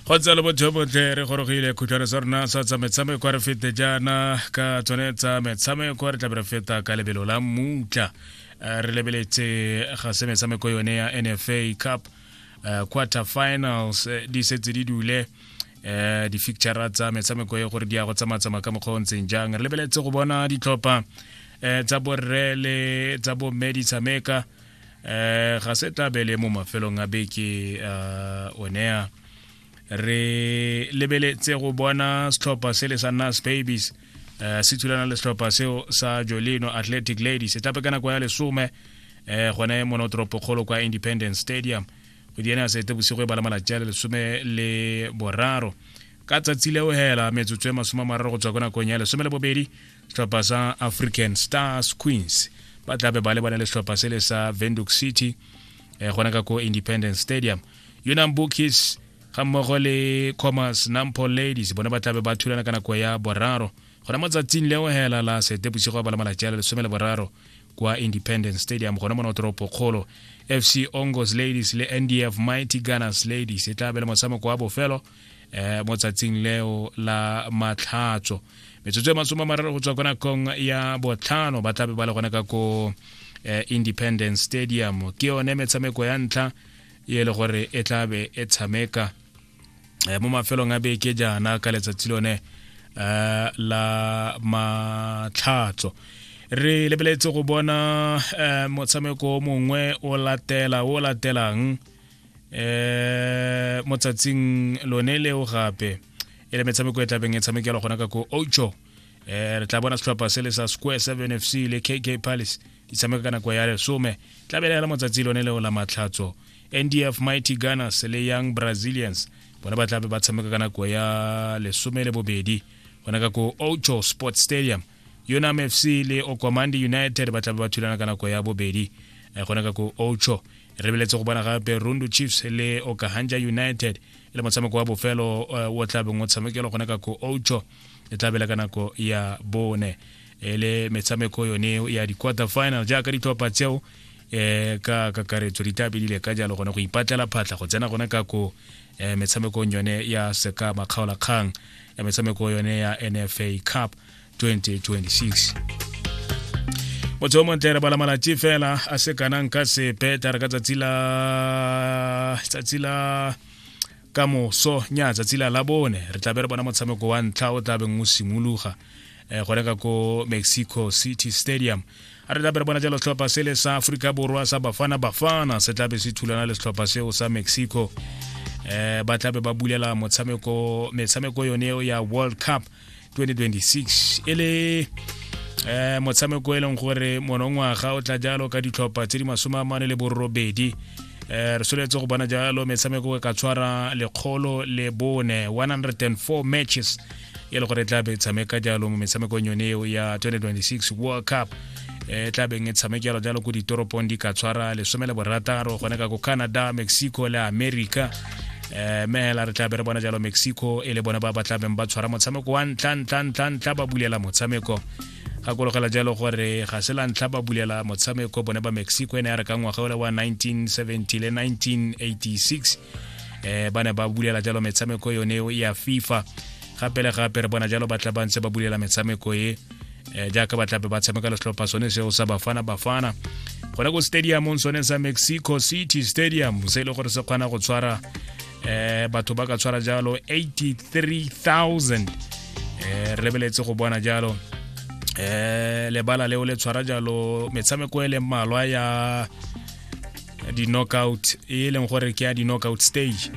go tsalo botho botle re gorogile khutshwane sa rona sa tsa metshameko re fete jaana ka tsone tsa metshameko re tlabe re feta ka lebelo la mmutla eh, re lebeletse ga se metshameko yone ya nfa cup eh, quarter finals eh, di setse di dule um di-fictura tsa metshameko e gore di ya go tsamatsama ka mokgwa o ntseng jang re lebeletse go bona ditlhopha um tsa borre le tsa bomme di tshameka eh ga se tabele mo mafelong a beke uh, onea re lebeletse go bona setlhopha se le sa nas babies uh, se thulana le setlhopha seo sa jolino athletic ladies se tape ka nako ya lesome um gone monotoropo kgolo kwa independence stadium go diene ya sete bosigo e bala malatsi a le lesome le boraro ka tsatsi leo hela metsotso e masome a mararo go tswa ko nakong ya lesome le bobedi tlhopha sa african stars queens ba tla be ba lebane le tlhopha se le sa venduc city eh, gona ka ko independence stadium unam bookies ga mmogo le commerce nampo ladies bone ba tla be ba thulana ka nako ya boraro gona mo tsatsing leo hela la sete bosigo ba le malatsi a le lesome le boraro kwa independence stadium gona mo notoropo kgolo fc ongos ladies le ndf mighty gunners ladies e tla be le motshameko wa bofelo eh, mo tsatsing leo la matlhatso metsotso e masome a mararo go tswa ko nakong ya botlhano ba tlabe ba le gone ka ko eh, independence stadium ke yone metshameko ya ntlha e le gore e tlabe e tshameka eh, mo mafelong a beke jaana ka letsatsi lone eh, la matlhatso re lebeletse go bona eh, motshameko mongwe o latela o latelang eh motsatsing lone leo gape e le metshameko e tlabeng e tshamekelwa gona ka ko ocho eh re tla bona setlhopha se le sa square 7 fc le kk palace di tshameka ka nako ya lesome tla be le motsatsi lone leo la matlhatso ndf mighty gunners le young brazilians bona ba tlabe ba tshameka ka nako ya lesome le bobedi gona ka ko ocho sports stadium unam fc le okomandi united ba tlabe ba thulana ka nako ya bobedi eh, gone ka ko ocho re beletse go bona gape rundu chiefs le okahanja united le motshameko wa bofelo eh, o tlabeng o tshamekelo gone ka ko ocho e tlabela ka nako ya bone e le metshameko yone ya di-quarter final jaaka ditlhopha tseo um ka kakaretso di tla bedile ka jalo gone go ipatlela phatlha go tsena gone ka ko um metshamekong yone ya seka makgaolakgang ya metshameko yone ya nfa cup 2026 motho o montle re bala malatsi fela a se kanang ka sepe tare ka tsatsi la tsatsi la ka moso nya tsatsi la labone re tlabe re bona motshameko wa ntlha o tlabeng o simologa um gone ka ko mexico city stadium a re tlabe re bona jalo setlhopha se le sa aforika borwa sa bafana bafana se tlabe se thulana le setlhopha seo sa mexico um ba tlabe ba bulela motshameko metshameko yone ya world cup 2026 e le um motshameko e leng gore monongwaga o tla jalo ka ditlhopha tse di masome a mane le borobedi um re soletse go bona jalo metshameko e ka tshwara lekgolo le bone 104 matches e le gore e tla be tshameka jalo mo metshamekong yone eo ya 2026 world cup e eh, tla beng e tshamekelwa jalo ko ditoropong di ka tshwara lesome le borataro gone ka ko canada mexico le america eh me hela re tla be re bona jalo mexico e le bone ba ba tla beng ba tshwara motshameko wa ntla ntla ntla ntla ba bulela motshameko gakologela jalo gore ga se la ntlha ba bulela motshameko bone ba mexico e ne ya re ka ngwaga ole wa 1970 le 1986 eh ba ne ba bulela jalo metshameko yone ya fifa gape le gape re bona jalo ba tla ba ntse ba bulela metshameko e um jaaka ba tlape ba tshameka letlhopha sone seo sa bafana bafana gona ko stadiumong sone sa mexico city stadium se e le gore se kgona go tshwara um batho ba ka tshwara jalo 83000 um re beletse go bona jalo um lebala leo le tshwara jalo metshameko e leng malwa ya di-knockout e e leng gore ke ya di-knockout stage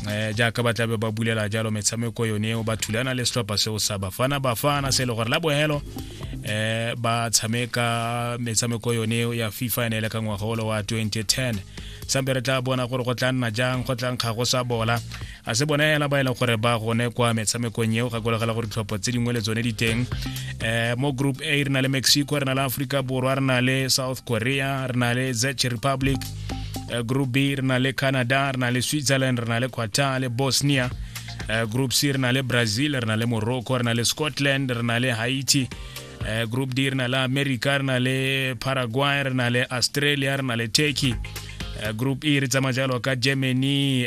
um jaaka ba tlabe ba bulela jalo metshameko yone eo ba thulana le setlhopha seo sa bafana bafana se e le gore la bohelo um ba tshameka metshameko yone eo ya fifa ene e le ka ngwagolo wa 2010 sampe re tla bona gore go tla nna jang go tlang ga go sa bola a se bona ela ba e leng gore ba gone kwa metshamekong eo gakolegela gore ditlhopho tse dingwe le tsone di teng um mo group a re na le mexico re na le aforika borwa re na le south korea re na le zech republic eh, group b re na le canada re na le switzerland re na le qatar le bosnia eh, group c re na le brazil re na le morocco re na le scotland re na le haiti eh, group d re na le america re na le paraguay re na le australia re na le turkey eh, group e re tsamaya jalo ka germany